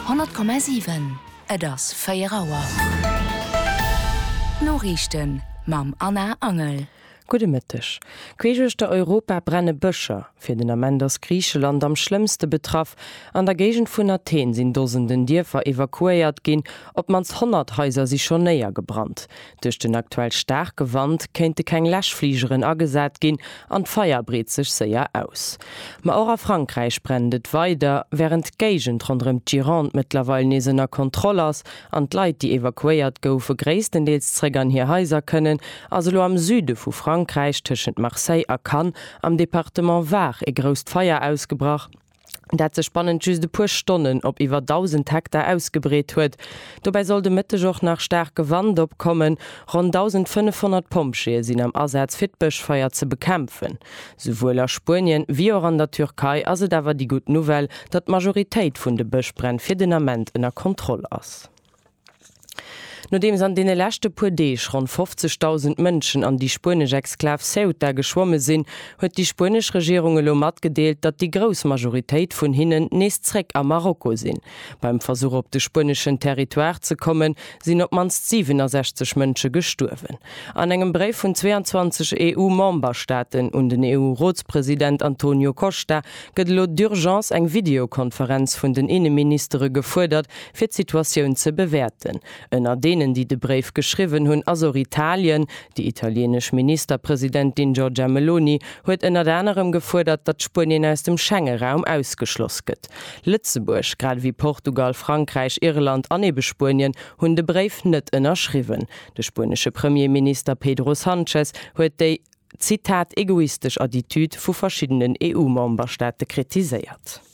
100,7, Et ass 4 Auer. D'Noriichten mam Anna Angel. Gudde Mëtteg. Queesch uechter Europa brenne Bëscher. Fir den Ament ass Griicheland am schlëmmste betraff. An der Géigend vun Athen sinn Dosenden Dierfer evakuéiert ginn. Op d'mannst 100 Haiser si schonn néiergebrannt. Duerch den aktuell staarke Wand kéinte keng Läschfligeren agesat ginn an d'Feier breet sech séier aus. Ma och a Frankräich brennt et weider. Wärend d'Géigend ronderëm d'Gironde mëttlerweil nees ënner Kontroll ass an d'Leit, déi evakuéiert goufe gréisstendeels zréck an hir Haiser kënnen, ass elo am Süde vu Frankräich, tëschent Marseille a Cannes am Departement Var, ee grousst Feier ausgebrach. dat sech bannent just e puer Stonnen op iwwer 1.000 Hektar ausgebreet huet. Dobäi soll de Mëtteg och nach staarke Wand opkommen. Ronn 1.500 Pompjeeë sinn am Asaz fir d'Bëschfeier ze bekämpfen. Souwuel a Spuenien, wéi och an der Türkei ass et awer déi gutt Nouvelle, datt d'Majoritéit vun de Bëschbränn fir den Ament ënner Kontroll ass. Nodeems an deene leschte puer Deeg ronn 50.000 Mënschen an déi spuenesch Exklav Ceuta geschwomme sinn, huet déi spuenesch Regierung elo matgedeelt, datt déi grouss Majoritéit vun hinnen nees zréck a Marokko sinn. Beim Versuch op de spueneschen Territoire ze kommen, sinn op d'mannst 67 Mënsche gestuerwen. An engem Bréif vun 22 EU-Memberstaaten un den EU-Rotspresident Antonio Costa gëtt elo d'Urgence eng Videokonferenz vun den Inneministere gefuerdert, Fir d'Situatioun ze bewäerten. Ënner deenen, déi de Bréif geschriwwen hunn, ass och Italien. Déi italieenesch Ministerpresidentin Giorgia Meloni huet ënnert anerem gefuerdert, datt Spuenien aus dem Schengeraum ausgeschloss gëtt. Lëtzebuerg, grad ewéi Portugal, Frankräich, Irland an ebe Spuenien, hunn de Bréif net ënnerschriwwen. De spuenesche Premierminister Pedro Sanchez huet déi, Zitat, egoistesch Attitüd vu verschiddenen EU-Memberstaate kritiséiert.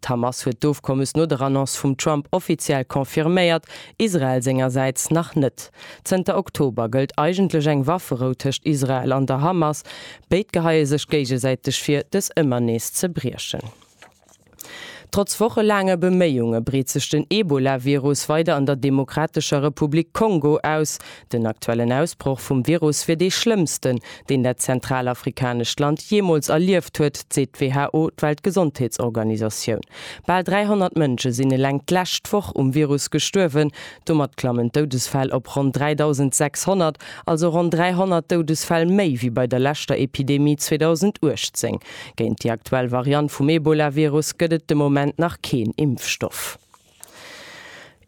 D'Hamas huet d'Ofkommes no der Annonce vum Trump offiziell confirméiert, Israel sengersäits nach net. Zënter Oktober gëllt eigentlech eng Wafferou tëscht Israel an der Hamas. Béid geheie sech géigesäiteg vir, dës ëmmer nees ze briechen. Trotz wochelaange Beméiunge breet sech den Ebola-Virus weider an der Demokratescher Republik Kongo aus. Den aktuellen Ausbroch vum Virus wier dee schlëmmsten, deen dat zentralafrikanescht Land jeemools erlieft huet, seet d'WHO, d'Weltgesondheetsorganisatioun. Bal 300 Mënsche sinn eleng d'lescht Woch um Virus gestuerwen. Domat klammen d'Doudesfäll op ronn 3.600, also ronn 300 Doudesfäll méi wéi bei der leschter Epidemie 2018. Géint déi aktuell Variant vum Ebola-Virus gëtt et de Moment nach keen Impfstoff.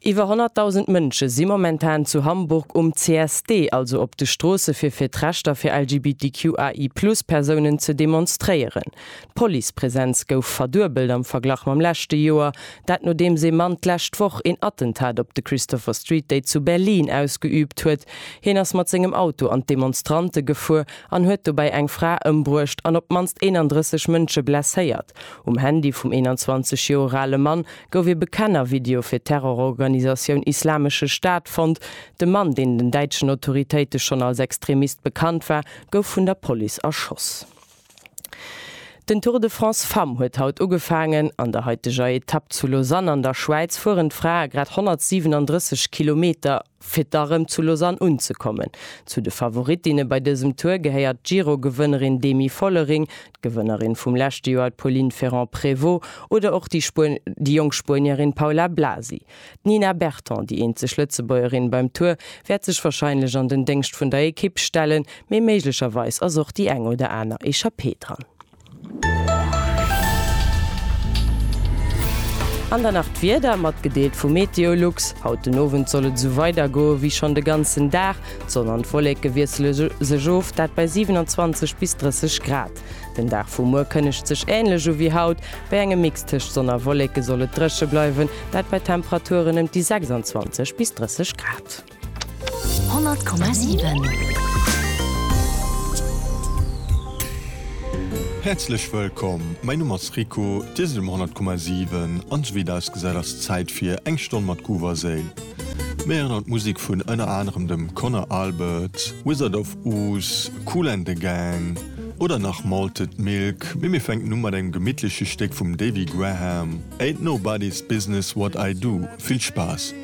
Iwwer 100.000 Mënsche si momentan zu Hamburg um CSD, also op de Stroosse fir fir d'Rechter fir LGBTQAI Plus Persounen ze demonstréieren. D'Policepresenz gouf verduebelt am Verglach mam leschte Joer, dat nodeems ee Mann d'lescht Woch een Attentat op de Christopher Street Day zu Berlin ausgeüübt huet. Hien ass mat sengem Auto an d'Demonstrante gefuer an huet dobäi eng Fra ëmbruecht an op d'mannst 31 Mënsche blesséiert. Um Handy vum 21 Joer ale Mann gouf ee Bekennervideo fir d'Terrororganisatioun Islamesche Staat fonnt. De Mann, deen den däitschen Autoritéite schonn als Extremist bekannt war, gouf vun der Police erschoss. Den Tour de France Femmes huet haut ugefaangen. An der haiteger Etapp zu Lausanne an der Schwäiz fueren d'Frae grad 137 Kilometer. Fir da rëm zu Lausanne unzekommen. Zu de Favorittinne bei dësem Tour gehéiert d'Giro-Gewënnerin Demi Vollering, d'Gewënnerin vum leschte Joer d'Pauline Ferrand-Prévot oder och déi jonk Spuenierin Paula Blasi. D'Nina Berton, déi eenzeg Lëtzebuergerin beim Tour, wäert sech warscheinlech an den Déngscht vun der Ekipp stellen, mee méiglecherweis ass och déi eng oder aner Echappée dran. An dann nach d'Wieder, matgedeelt vu Meteolux. Haut den Owend soll et esou weider goe wéi schonn de ganzen Dag. D'Sonn an d'Wolleke wiessele sech of, dat bei 27 bis 30 Grad. Den Dag vu muer kënnegt sech änlech u wéi haut. Bei engem Mix tëscht Sonn a Wolleke soll et dréche bleiwen, dat bei Temperaturen ëm déi 26 bis 30 Grad. 100,7. Häerzlech wëllkomm, mäi Numm ass Rico, Dir sidd um 100,7 an esou wéi et ausgesäit ass Zäit fir eng Stonn mat Groove a Séil. Mir héieren haut Musek vun ënner anerem dem Conor Albert, Wizard of Oz, Kool and the Gang oder nach Malted Milk, mee mir fänken u mat engem gemittleche Stéck vum Davy Graham, Ain't Nobody's Business What I Do. Vill Spaass!